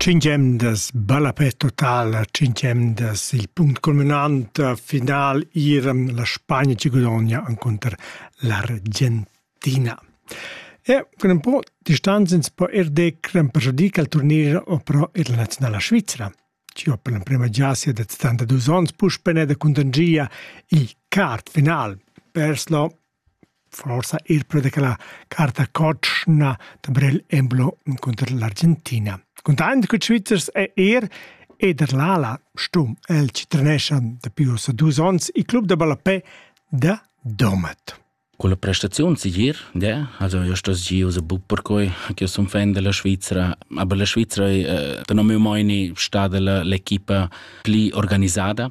Cinque emdas ballapè totala, cinque emdas il punct culminant, final iran la Spagna che guadogna contro l'Argentina. E con un po' distanza ins può er decrem per giudir che il turnier o però ir la nazionale Svizzera. Io per la prima giassia da 72 anni puspene da contangia il quart final. Perslo Forsa eir perche cha la carta cotschna da Brel emblò encunter l'Argentina. Cuntaint cun ils Svizzers è er Ederlala stum. El ci trenescha dapi ussa dus ons il club da ballapè da Domat. Con la prestazione sicir, ja, also io sto gi usa buc per quei che son fan della Svizzera, aber la Svizzera è eh, da non mi mai ni stata l'equipa pli organizzata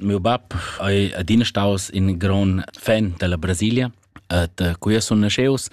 Miu bab ei adina staus in gron fan dalla Brasilia ed cui sun nasceus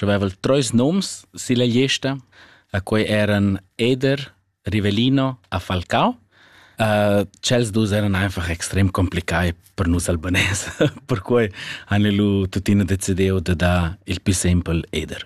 aveval treis noms silla gliesta e quei eran Eder, Rivellino e Falcao. tschels dus eran einfach extrem complicai per nus albanès, perquei han lu tuttina decidiu da dar il più sempel Eder.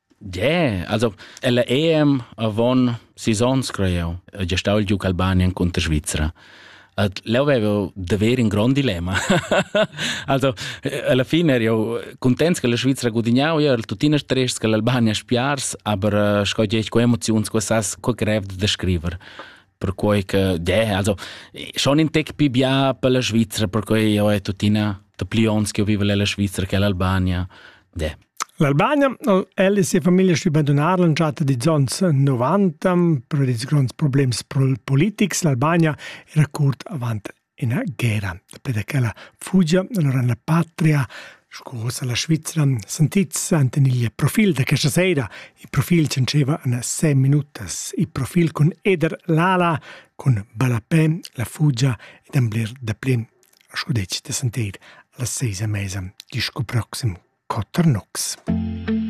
Yeah, also la EM avon sis onns creiu, gia stau il giug Albanian cunter Svizra. At leu avevo d'haver in grond dilemma. also alla fine ero contents che la Svizra gudignau, io ero tuttina stress che l'Albania spiars, aber sco gie con emoziuns che sas co grev da scriver. Perquei che yeah, also schon in tec più bia per la Svizra, perquei io è tuttina da pli ons che io vivo la Svizra che l'Albania. Yeah. L'Albania ha'l el e sia famiglia stü bandunar l'entschatta dils ons novanta pervi dils gronds problems politics. L'Albania era curt avant üna guerra. Daplü da quella fugia allora la patria sco uossa la Svizra sentits ant in il profil da questa sera. Il profil c'anceva in 6 minutas. Il profil cun Eder Lala, cun Balapè, la fugia ed en bler da plin sco detg da sentir las seis a mesa disco proxim quatter nocs.